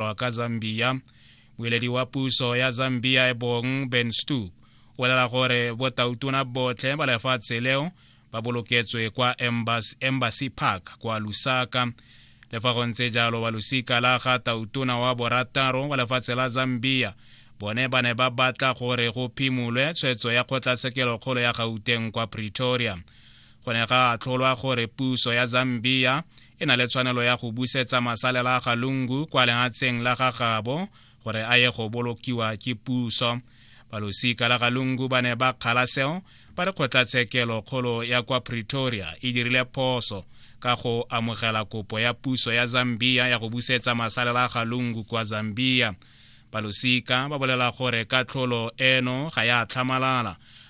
lwa ka zambia boeledi wa puso ya zambia e bong ben stoop o lela gore botautona botlhe ba lefatshe leo ba boloketswe kwa embassy park kwa lusaka le fa go ntse jalo ba losika la ga tautona wa borataro wa lefatshe la zambia bone ba ne ba batla gore go phimolwe tshwetso ya kgotlatshekelo kgolo ya gauteng kwa pretoria go ne ga atlholwa gore puso ya zambia e na le tshwanelo ya go busetsa masalela a galungu kwa lehatsheng la ga gabo gore a ye go bolokiwa ke puso balosika la galungu ba ne ba kgala seo ba re kgotlatshekelo kgolo ya kwa pretoria e dirile phoso ka go amogela kopo ya puso ya zambia ya go busetsa masalela a galungu kwa zambia balosika ba bolela gore katlholo eno ga ya tlhamalala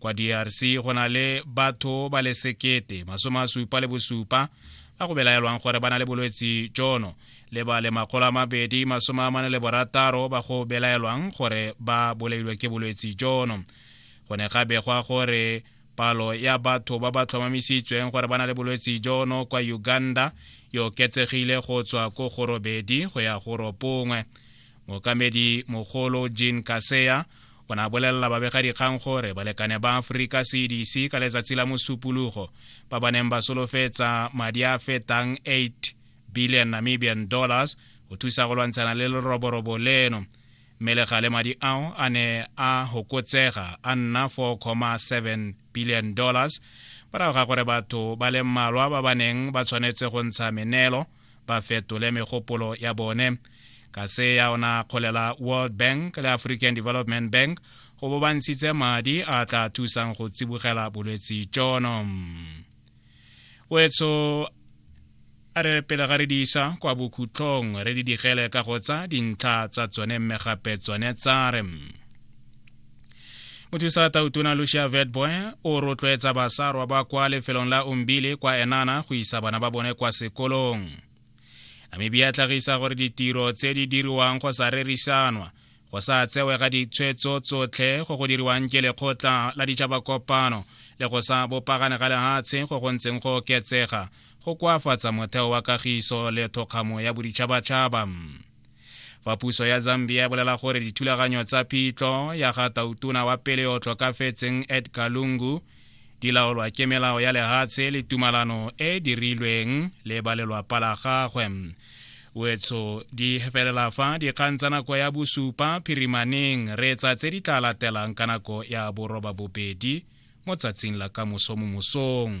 kwa drc go na le batho ba le sekete masome a supa le bosupa ba go belaelwang gore ba na le bolwetsi jono le ba le makgolo a mabedi masome a mane le borataro ba go belaelwang gore ba bolailwe ke bolwetsi jono go ne ga begwa gore palo ya batho ba ba tlhomamisitsweng gore ba na le bolwetsi jono kwa uganda e oketsegile go tswa ko go robedi go ya go ropongwe mookamedi mogolo jean kaseya o ne a bolelela babegadikgang gore balekane ba aforika cdc ka letsatsi la mosupologo ba ba neng ba solofetsa madi a fetang 8 billion namibian dollars go thusa go lwantshana le leroborobo leno mme le gale madi ao a ne a hokotsega a nna 4,7 billion dollars morago ga gore batho ba le mmalwa ba ba neng ba tshwanetse go ntsha menelo ba fetole megopolo ya bone ka se ya ona kgolela world bank le african development bank go bo ba ntshitse madi a tla thusang go tsibogela bolwetse jono wetso a re pele ga re di isa kwa bokhutlhong re di digele ka go tsa dintlha tsa tsone mme gape tsone tsa re mothusa tautona lucia vetboy o rotloetsa basarwa ba kwa lefelong la umbile kwa enana go isa bana ba bone kwa sekolong namibia e tlhagisa gore ditiro tse di diriwang go sa rerisanwa go sa tsewe ga ditshwetso tsotlhe go go diriwang ke lekgotla la ditšhabakopano le go sa bopagane ga lehatshe go go ntseng go oketsega go koafatsa motheo wa kagiso le thokgamo ya boditšhabatšhaba fa puso ya zambia e bolela gore dithulaganyo tsa phitlho ya ga tautona wa pele o tlhokafetseng edgar lungu di laolwa ke melao ya lehatshe le tumalano e dirilweng le ba lelwapa la gagwe wetso di felela fa dikgang tsa nako ya bosupa phirimaneng re tsa tse di tla latelang ka nako ya boroba bobedi mo tsatsing la ka moso mo mosong